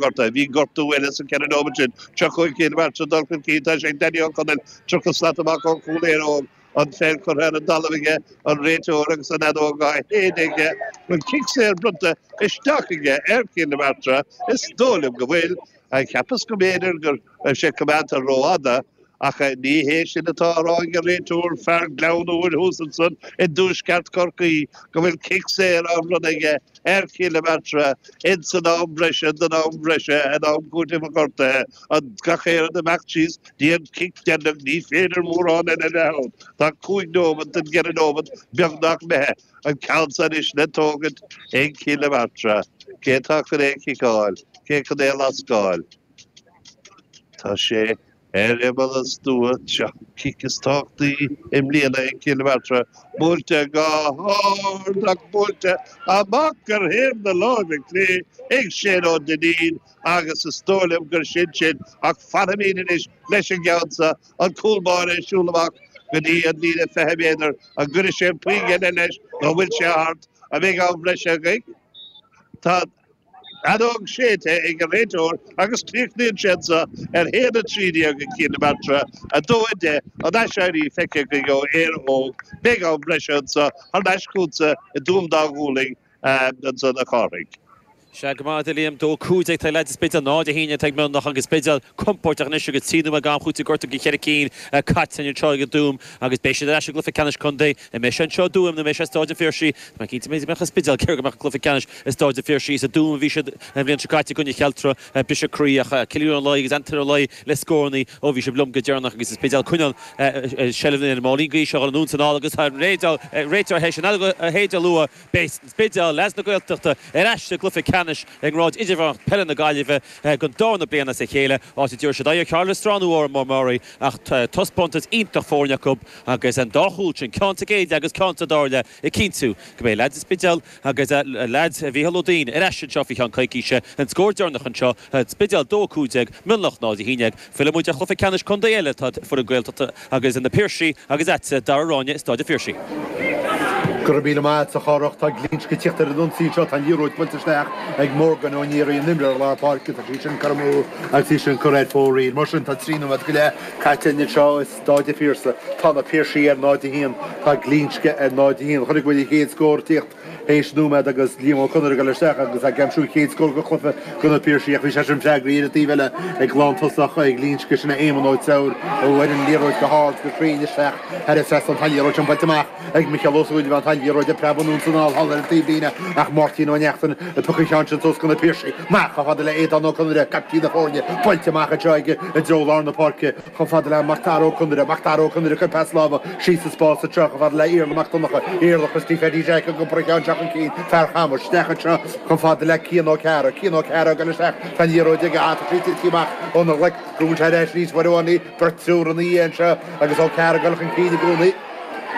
gorta. Bhí gortú eile sa 4 nóimead sin. Seo chugainn Cill na Martra ag dul chun cinn. Tá sé ag Danny Ó Conaill 30 slat amach ó chúl Éire Óg. An pheil curtha ar an dtalamh aige, an réiteoir agus an fheadóg á séideadh aige. An cic saor bronnta isteach aige ar Chill na Martra. Is dóigh liom go bhfuil. Cheapas go mb'fhéidir go raibh sé coimeádta rófhada. Ach ní hé sin atá á rá ag an réiteoir, fear Ghleann Úir thuas ansan i dtuaisceart Chorcaí, go bhfuil cic saor á bhronnadh aige ar Chill na Martra ins an am breise den am breise in am cúitimh an ghortaithe, an gach aon rud ag imeacht síos dtí an cic deireanach ní féidir mórán eile a bheith ann, tá cúig nóimeat den gceithre nóimeat beagnach imithe, an ceann seo anois le tógaint ag Cill na Martra. Cé atá chun é a chiceáil? Cé chun é a lascáil? Tá sé. Ar imeall an stua, an cic is tábhachtaí i mbliana i gCill na Martra, buailte go hard ach buailte amach ar thaobh na láimhe clé ag Shane Ó Duinnín agus is dóigh liom gur sin sin ach fanfaimid anois leis an gceann seo, an cúl báire ag siúl amach go dtí an líne 20 méadar, an gcuirfidh sé aon phioc eile leis nó an bhfuil sé thart? An mbeidh am breise againn? Tá an. Fheadóg séidte ag an réiteoir agus críochnaíonn sé anseo ar 1 13 ag Cill na Martra, 2 10 an aiséirí feicthe againn ó Éire Óg, beidh am breise anseo thar n-ais chugatsa i dTuaim Dá Ghualainn anseo a Chárthaigh. Sea go raibh maith a't, a Liam. Dó cúig déag ag leaids an Spidéil, náid a haon déag ag Mionlach agus Spidéal compóirteach anois agus trí nóiméad d'am cúitimh gortaithe de cheithre cinn caite anseo i dTuaim agus beidh siad ar ais i gcluiche ceannais contae An mbeidh sé anseo i dTuaim nó an mbeidh sé i Stáid an Phiarsaigh? Tá mé cinnte go mbeidh i Spidéal cé go mbeadh an cluiche ceannais i Stáid an Phiarsaigh. Is i dTuaim a bhí siad an bhliain seo caite i gcoinne Chealtra. Briseadh croí ach Cillian Ó Laoi agus Antaine Ó Laoi le scóranna ó bhí sibh liom go deireanach agus an Spidéal ag coinneáil seilbh na Rinne Máirín gaois a dhul anonn 's anall agus réiteoir théis an leithéid a lua. Beidh An Spidéal, leaids na Gaeltachta, ar ais sa gcluiche ceannais i ngrád idirmheánach peile na Gaillimhe don darna bliain as a chéile, áit a dtabharfaidh siad aghaidh ar Chathair Loistreáin nó Órán Mór Meáraí ach taispeántas iontach foirne acu. Agus an dá chúl sin, ceann sa gcéad leath agus ceann sa dara leath, ag cinntiú go mbeidh leaids an Spidéil agus leaids Mhícheál Ó Duinn ar ais anseo faoi cheann coicíse. An scór deireanach anseo, An Spidéal 2 15 Mionlach 0 11. Filleann muid ar chluiche ceannais contae eile, tá foireann Gaeltachta agus sin Na Piarsaigh agus tá Dara Ó Ráinne i Stáid an Phiarsaigh. Go raibh míle maith a't, a Chárthaigh. Tá Glinsce ag tíocht ar an ionsaí anseo. Tá an liathróid buailte isteach ag Morgan Ó Nearaí, an imreoir lár páirce. Tá sí sin curtha amú agus í sin curtha ar fóraoil. Mar sin, tá trí nóiméad go leith caite againn anseo. Tá na Piarsaigh ar 0 1. Tá Glinsce ar 0 1. Chonaic muid an chéad scór ag tíocht théis nóiméad agus Liam Ó Conaire ag dul isteach agus ag aimsiú an chéad scór den chluiche do na Piarsaigh ach bhí sé sin freagraithe ar an taobh eile ag lántosach Ghlinsce, sin é Éamonn Ó Treabhair a bhuail an liathróid go hard go cruinn isteach thar an trasnán. Tá an liathróid sin buailte amach ag Micheál Ó Súilleabháin. Tá an liathróid ag preabadh anonn 's anall thall ar an taobhlíne ach Máirtín Ó Neachtain ag piocadh an cheann sin suas go na Piarsaigh. Amach chomh fada le Aodán Ó Conaire, caiptín na foirne, buailte amach anseo aige i dtreo lár na páirce. Chomh fada le Mac Dara Ó Conaire, Mac Dara Ó Conaire, ag cur pas láimhe síos sa spás anseo, chomh fada le Iarla Mac Donnacha, Iarla Christy Pheaidí Jeaic, ag iompar an cheann isteach chun cinn, fear Chamuis, isteach anseo, chomh fada le Cian Ó Cearra, Cian Ó Cearra, ag dul isteach, tá an liathróid aige, ach tá sí ag titim amach óna ghlaic, go bhfuil sé ar ais arís uair amháin eile, beirt triúr ina dhiaidh anseo agus Ó Cearra ag dul chun cinn i gcónaí.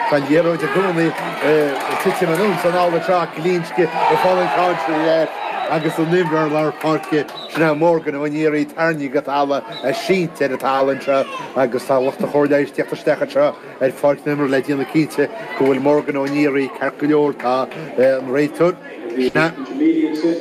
Tá an liathróid i gcónaí ag titim anuas anall anseo ach Glinsce, ag fáil an chailc ar leath agus an t-imreoir lár páirce sin é Morgan Ó Náraigh tarraingthe go talamh sínte ar an talamh anseo agus tá lucht an chóir leighis ag tíocht isteach anseo ar pháirc na himeartha le déanamh cinnte go bhfuil Morgan Ó Náraigh ceart go leor, tá an réiteoir, sin é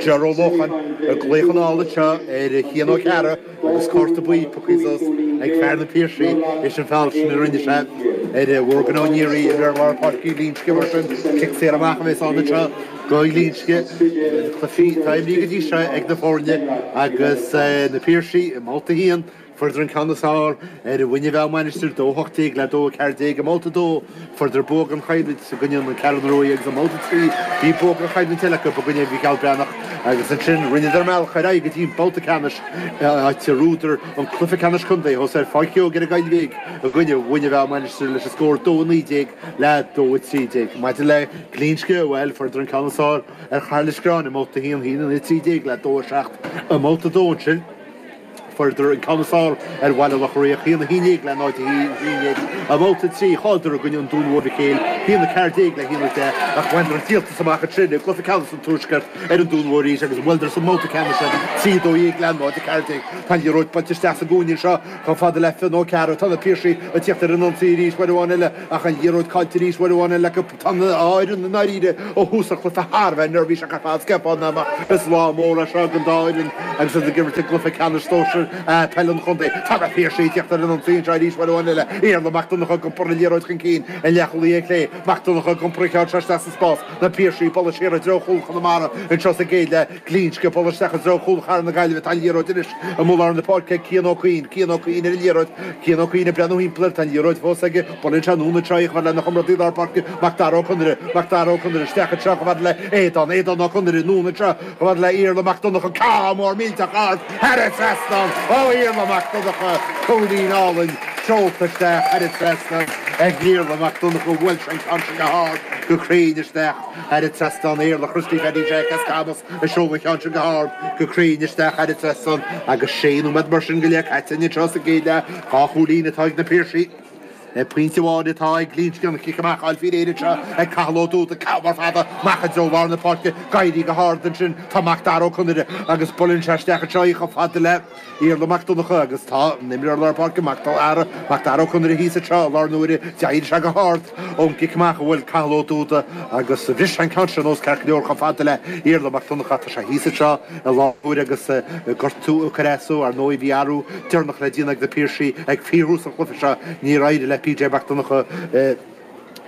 Ger Ó Lócháin, ag glaoch anall anseo ar Chian Ó Cearra. Agus cárta buí pioctha suas ag fear na Piarsaigh théis an feall sin a rinne sé ar Mhorgan Ó Náraigh, imreoir lár páirce Ghlinsce mar sin cic saor amach a bheas ann anseo go Ghlinsce. Na cluichí atá imrithe go dtí seo ag na foirne agus na Piarsaigh i mbabhta a haon, fuaireadar an ceann is fearr ar Mhuine Mheá Mainistir 2 18 le 2 14 i mbabhta a dó, Fuaireadar bua aon chúilín i gcoinne na Ceathrún Rua agus i mbabhta 3. Bhí bua aon chúilín eile acu i gcoinne Mhícheál Breathnach agus ansin rinneadar a mbealach ar aghaidh go dtí an babhta ceannais áit ar bhuadar an cluiche ceannais contae thuas ar Pháirc Keogh ar an Ghaillmhigh i gcoinne Mhuine Mheá Mainistir leis an scór 2 19 le 2 13. Maidir le Glinsce, bhuel, fuaireadar an ceann is fearr ar Chathair Loistreáin i mbabhta 1 1 13 le 2 7 i mbabhta 2 ansin. Fuaireadar an ceann is fearr ar Bhaile Locha Riach, 1 11 le 0 11 i mbabhta 3, chailleadar i gcoinne an Dúin Mhóir Mhic Éil, 1 14 le 1 10, ach bhaineadar an díoltas amach i Trionid, cluiche ceannais an Tuaiscirt, ar an Dún Mór arís agus bhuaileadar sa mbabhta ceannais iad 3 12 le 0 14. Tá an liathróid buailte isteach sa gcúinne anseo chomh fada le Fionn Ó Cearra, tá na Piarsaigh ag tíocht ar an ionsaí arís, uair amháin eile ach an liathróid caillte arís, uair amháin eile acu. Tá an dá fhoireann i ndáiríre ó thús an chluife thar a bheith neirbhíseach ar fad, scaipthe amach is lá mór é seo ag an dá fhoireann agus iad ag imirt i gcluife ceannais sóisear A peil an chontae. Tá na Piarsaigh ag tíocht ar an ionsaí anseo arís uair amháin eile, Iarla Mac Donnacha ag iompar na liathróid chun cinn an leathchúlaí clé, Mac Donnacha ag iompar an cheann seo isteach sa spás, na Piarsaigh ag bualadh siar i dtreo chúl Chonamara anseo sa gcéad leath. Glinsce ag bualadh isteach i dtreo chúl Chathair na Gaillimhe tá an liathróid arís amuigh i lár na páirce ag Cian Ó Cuinn, Cian Ó Cuinn ar an liathróid, Cian Ó Cuinn ag breathnú thimpeall air, tá an liathróid fós aige, buaileann sé anonn anseo chomh fada lena chomrádaí lár páirce, Macdara Ó Conaire, Macdara Ó Conaire isteach anseo chomh fada le Aodán, Aodán Ó Conaire anonn anseo chomh fada le Iarla Mac Donnacha, ceann mór millteach ard thar an trasnán ó Iarla Mac Donnacha, cúilín álainn seolta isteach thar an trasnán ag Iarla Mac Donnacha, bhuail sé an ceann sin go hard, go cruinn isteach. Thar an trasnán Iarla Christy Paddy Jack as Camas a sheol an ceann sin go hard, go cruinn isteach thar an trasnán agus sé nóiméad mar sin go leith caite anseo sa gcéad leath. Dhá chúilín atá ag na Piarsaigh. Ag pointe amháin atá ag Glinsce, an chic amach á fáil faoi réir anseo ag Cathal Ó Dúda, ceann mór fada amach i dtreo lár na páirce, ag éirí go hard ansin, tá Macdara Ó Conaire agus buaileann sé isteach anseo í chomh fada le. Iarla Mac Donncha agus tá an t-imreoir lár páirce Macdara, Macdara Ó Conaire thíos anseo i láthair na huaire, d'éirigh sé go hard ón gcic amach a bhuail Cathal Ó Dúda agus bhris sé an ceann sin anuas ceart go leor chomh fada le Iarla Mac Donncha tá sé thíos anseo i láthair na huaire agus gortú ag cur as dó ar ndóigh bhí athrú deireanach le déanamh ag na Piarsaigh ag fíorthús an chluiche seo níor éirigh le PJ Mac Donncha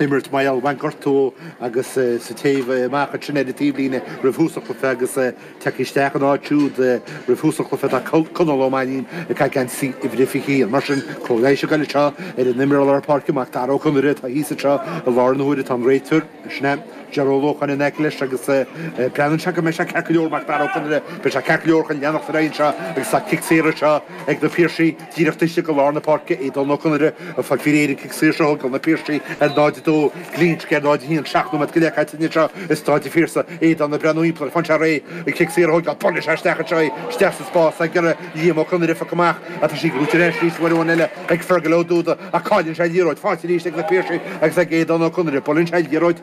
imirt mar bhain gortú dó agus sa téamh amach ansin ar an taobhlíne roimh thús an chluiche agus tagtha isteach in áit siúd roimh thús an chluiche tá Conall Ó Mainnín ag caitheamh geansaí uimhir a 21. Mar sin, cóir leighis ag goil anseo ar an imreoir lár páirce, Mac Dara Ó Conaire, atá thíos anseo i láthair na huaire, tá an réiteoir, sin é Jerry Ó Lócháin, in aice leis agus breathnaíonn sé go mbeidh sé ceart go leor, Mac Dara Ó Conaire, beidh sé ceart go leor chun leanacht ar aghaidh anseo agus tá cic saor anseo ag na Piarsaigh. Díreach istigh go lár na páirce, Aodán Ó Conaire ag fáil faoi réir an cic saor seo a thógáil na Piarsaigh ar 0-2, Glinsce ar 0-1 ag seacht nóiméad go leith caite anseo i Stáid an Phiarsaigh, Aodán ag breathnú timpeall air, faigheann sé réidh an cic saor a thógáil, buaileann sé isteach anseo é, isteach sa spás ag iarraidh Liam Ó Conaire a phiocadh amach ach tá sí gnóite ar ais arís, uair amháin eile ag Fergal Ó Dúda ach cailleann sé an liathróid, faighte arís ag na Piarsaigh agus ag Aodán Ó Conaire, buaileann sé an liathróid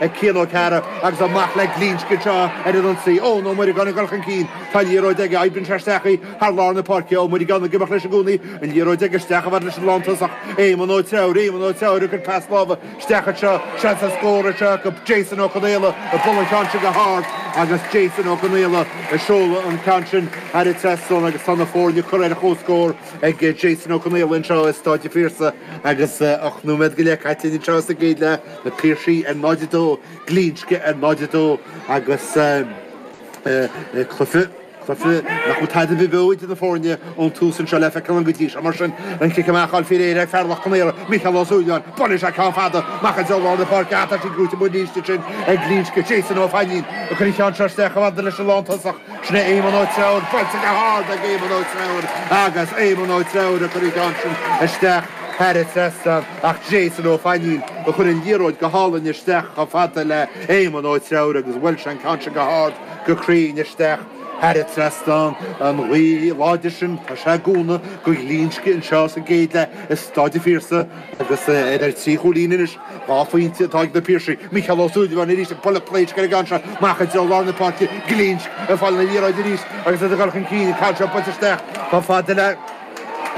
ag Cian Ó Cearra agus amach le Glinsce anseo ar an ionsaí. Eoin Ó Muireagáin ag dul chun cinn. Tá liathróid aige, oibríonn sé isteach í thar lár na páirce. Ó Muireagáin ag imeacht leis i gcónaí. An liathróid aige, isteach chomh fada leis an lántosach, Éamon Ó Treabhair. Éamon Ó Treabhair ag cur pas láimhe isteach anseo. Seans ar scór anseo acu. Jason Ó Conaola ag bualadh an ceann sin go hard agus Jason Ó Conaola ag seoladh an ceann sin thar an trasnán agus tá na foirne curtha ar chomhscór ag Jason Ó Conaola anseo i Stáid a' Phiarsaigh agus ocht nóiméad go leith caite linn anseo sa gcéad leath. Na Piarsaigh ar 0, 2, Glinsce ar 0, 2 agus cluiche, cluiche nach bhfuil tada ar bith beo idir na foirne ón tús anseo le feiceáil ann go dtí seo mar sin. An cic amach á fháil faoi réir ag fear Loch Con Aortha, Micheál Ó Súilleabháin, buaileann sé ceann fada amach i dtreo lár na páirce ach tá sí gnóite amuigh arís ansin ag Glinsce, Jason Ó Fainnín ag cur an cheann seo isteach chomh fada leis an lántosach, sin é Éamonn Ó Treabhair, buailte go hard ag Éamonn Ó Treabhair agus Éamonn Ó Treabhair ag cur an cheann sin isteach thar an trasnán. Ach Jason Ó Fainín a chuir an liathróid go hálainn isteach chomh fada le Éamonn Ó Treabhair agus bhuail sé an ceann sin go hard go cruinn isteach thar a trasnán an ghaoth láidir sin. Tá sé ag cúnamh go Ghlinsce anseo sa gcéad leath i Stáid an Phiarsaigh agus iad ar trí chúilín anois dhá phointe atá ag na Piarsaigh. Micheál Ó Súilleabháin arís ag bualadh pléisc ar an gceann seo amach i dtreo lár na páirce, Glinsce ag fáil na liathróid arís agus iad ag dul chun cinn an ceann seo buailte isteach chomh fada le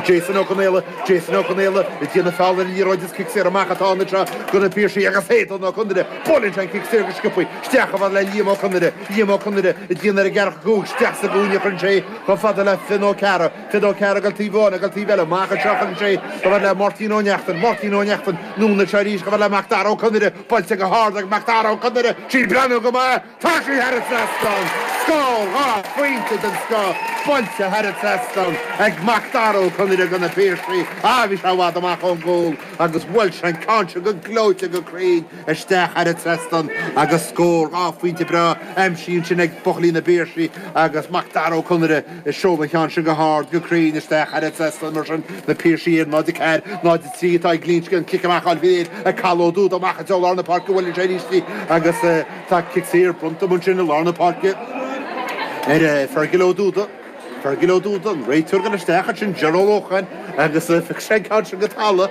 Jason Ó Conaola, Jason Ó Conaola ag déanamh feall ar an liathróid is cic saor amach atá ann anseo go na Piarsaigh agus Aodhán Ó Conaire, buaileann sé an cic saor go sciobthaí isteach chomh fada le Liam Ó Conaire, Liam Ó Conaire ag déanamh ar an gceathracha cúig, isteach sa gcúinne chuireann sé chomh fada le Finn Ó Cearra, Finn Ó Cearra go taobh amháin, go taobh eile, amach anseo chuireann sé chomh fada le Máirtín Ó Neachtain, Máirtín Ó Neachtain, anonn anseo arís chomh fada le Macdara Ó Conaire, buailte go hard ag Macdara Ó Conaire, sí ag breathnú go maith! Tá sí thar a trasnán! Scór, dhá phointe den scoth buailte thar a trasnán ag Macdara Ó Conaire do na Piarsaigh. Á, bhí sé i bhfad amach ón gcúl agus bhuail sé an ceann seo go gleoite go cruinn isteach thar a trasnán agus scór, dhá phointe breá aimsithe ansin ag buachaillí na bPiarsaigh agus Macdara Ó Conaire ag seoladh an ceann sin go hard go cruinn isteach thar a trasnán mar sin. Na Piarsaigh ar 0, 4, 0, 3 atá ag Glinsce an cic amach áil bhí ag Cathal Ó Dúda amach i dtreo lár na páirce bhuaileann sé arís di agus, Tá cic saor bronnta amuigh ansin i lár na páirce ar Fergal Ó Dúda. Fergal Ó Dúda, an réiteoir, ag dul isteach ansin Ger Ó Lócháin agus phioc sé an ceann sin go talamh.